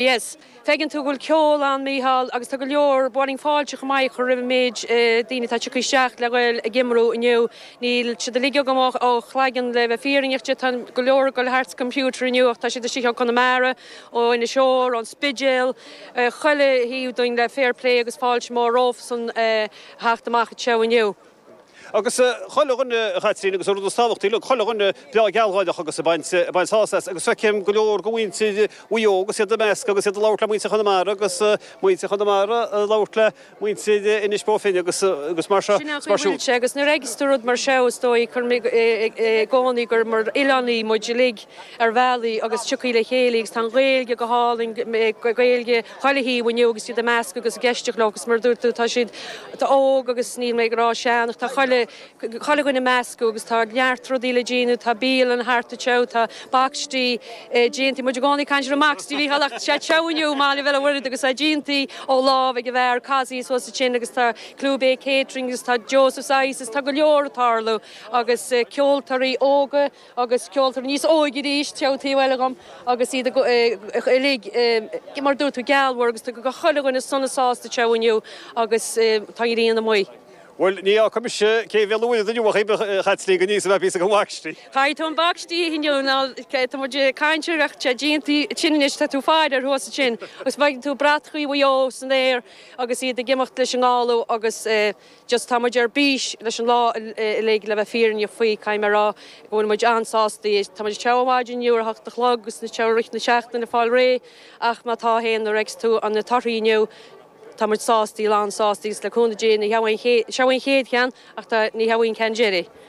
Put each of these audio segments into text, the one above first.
Yes. Feiceann tú go bhfuil ceol ann, Mícheál, agus tá go leor, ba mhaith linn fáilte chomh maith a chur roimh an méid daoine atá ag tíocht isteach le ghoil ag iomramh inniu. Níl siad uilig agam ó chloigeann le bheith fírinneach duit, tá go leor ag goil thart sa gcomputer inniu ach tá siad istigh ó Chonamara, ó Inis Oírr, ón Spidéal, chuile thaobh dínn le fair play agus fáilte mhór rompusan a theacht amach anseo inniu. Agus chuile dhuine, a Chaitríona, agus an rud is tábhachtaí, look, chuile dhuine breá gealgháireach agus ag baint, ag baint sásamh as. Agus feicim go leor de mhuintir Mhaigh Eo agus iad i measc, agus iad ag labhairt le muintir Chonamara agus muintir Chonamara ag labhairt le muintir Inis Bó Finne agus, agus mar seo, Sin é is mar faoi bhfuil siúd. sé. Agus nuair a fhaigheas tú rud mar seo, is dóigh, cuirim i gcónaí gur mar oileánaigh muid uilig ar bhealach agus ag tíocht le chéile agus tá an Ghaeilge go hálainn, Gaeilge, chuile thaobh inniu agus iad ag meascadh agus ag éisteacht leo agus mar a dúirt tú tá siad óg agus níl mé ag rá sean ach tá chuile chuile dhuine ag meascadh agus tá neart rudaí le déanamh, tá bialann thart anseo, tá bacstaí déanta, muid i gcónaí ag caint ar an mbacstaí, Mícheál ach tá sé anseo inniu, maille fheile Mhuraed agus é déanta ó lámh ag an bhfear Casey thuas ansin agus tá Clew Bay Catering agus tá Joseph's Ices tá go leor ag tarlú agus ceoltóirí óga, agus ceoltóirí níos óige arís anseo an taobh eile agam agus iad uilig mar a dúirt tú gealgháireach agus tá chuile dhuine sona sásta anseo inniu agus tá an ghrian amuigh. Bhuel, ní fhaca mise cé mhéad uaire den uair ab chaitligh aníos a bheith thíos ag an bhacstaí. Caithfidh tú an bacstaí a ithe inniu mar tá muid ag caint ar bheadh sé déanta sin anois tá tú ag faire ar thuas ansin agus bheadh tú bratachaí Mhaigh Eo san aer agus iad ag imeacht leis an ngála agus just tá muid ar bís leis an lá uilig, le bheith fírinneach faoi, caithfidh mé a rá go bhfuil muid an-sástaí. Tá muid ag treabhadh ó mhaidin inniu ar a hocht a chlog agus muid ag treabhadh i rith na seachtaine le fáil réidh ach má tá fhéin, nuair a fheicfidh tú an na torthaí inniu, tá muid sástaí, lánsástaí agus le cúnamh Dé ní headh í an chéad cheann ach tá, ní headh í an ceann deiridh.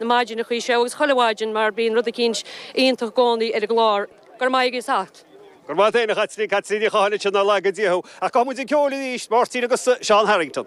na maidin a chuaigh sé agus chuile mhaidin mar bíonn rud eicínt iontach i gcónaí ar an gclár. Go raibh maith aige is acht. Go raibh maith agat féin a Chaitlín, Caitlín Ní Chathail, ansin nár laga Dia thú. Ach gabhfaidh muid ag ceol arís, Máirtín agus Seán Harrington.